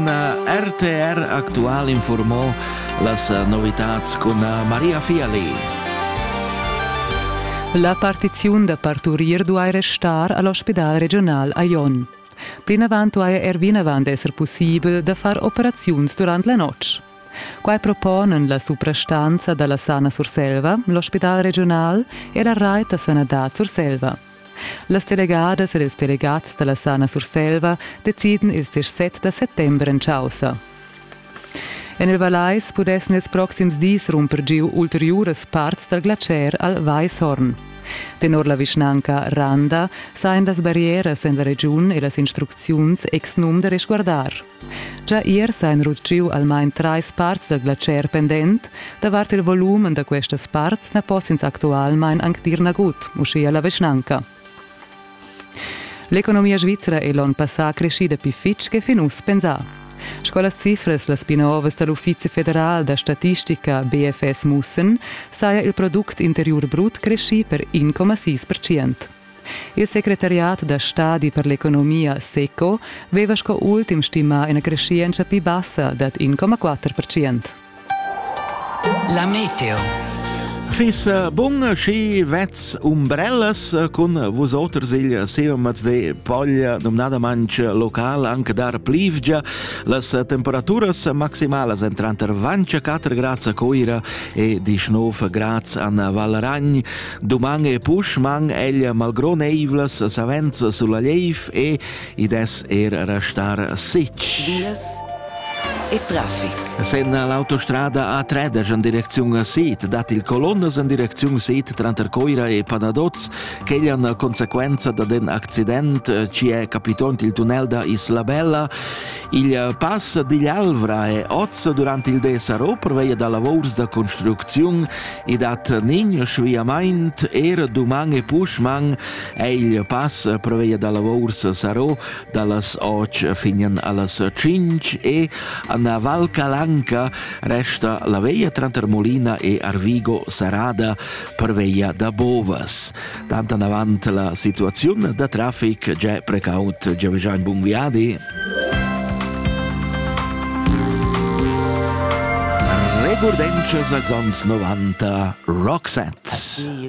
RTR Aktual informò las novitats cun Maria Fiali. La partiziun da parturir duai restar a l'ospidal regional a Jon. Plinavant duai er vinavant esser pussibel da far operaziuns durant la notg. Quai proponan la suprastanza da la Sana Surselva, l'ospidal regional e la rait da sanadad Surselva. Las delegadas ed ils delegats dalla Sana Surselva deciden ils disset da settember en caussa. En il Vallais pudessen ils proxims dis rumper giu ulteriuras parts dal glacier al Weishorn. Tenor la vischnanca Randa sajan las barrieras en la regiun e las instrucziuns ex num da resguardar. Gia ier s'han rutgiu almain trais parts dal glatscher pendent. Davart il volum da questas parts na poss'ins actualmain anc dir nagut, uschia la vischnanca. L'economia svizra è l'onn passà creschida pli fitg che fin uss pensà. Sco las cifras las pli novas da l'Uffizi federal da statistica BFS mussen, saja il product interiur brut creschì per 1,6 percent. Il secretariat da stadi per l'economia SECO veva sco ultim stimà ina creschientscha pli bassa dad 1,4 percent. La meteo. Fis äh, bun schi vez umbrellas äh, cun vusoters il seumaz de Poglia nomnadamantsch local anche dar plivgia las äh, temperaturas maximalas entranter vanch 4 grads a Coira e 19 grads an Valragn Doman e pusch man egl malgroneivlas savenzas sulla leif e i des er restar sitg. Vias e traffic. Sen l'autostrada A3 en direcziun Sid dat il colonnas en direcziun Sid tranter Coira e Panadoz ch'eglian conseguenza da den accident eh, ci è capitont il tunnel da Isla Bella Il eh, pass digl Alvra è oz durant il des a Ro perveia da lavurs da construcziun e dat nign sviamaint er duman e puschman è il pass perveia da lavurs Saro dallas 8 finian allas 5 e a Val Calanca resta la veia tranter Molina e Arvigo Sarada perveia da Bovas. tant avant la situaziun da traffic già precaut giaveggia in bun viadi. Regurdentsches als ans 90 Roxette.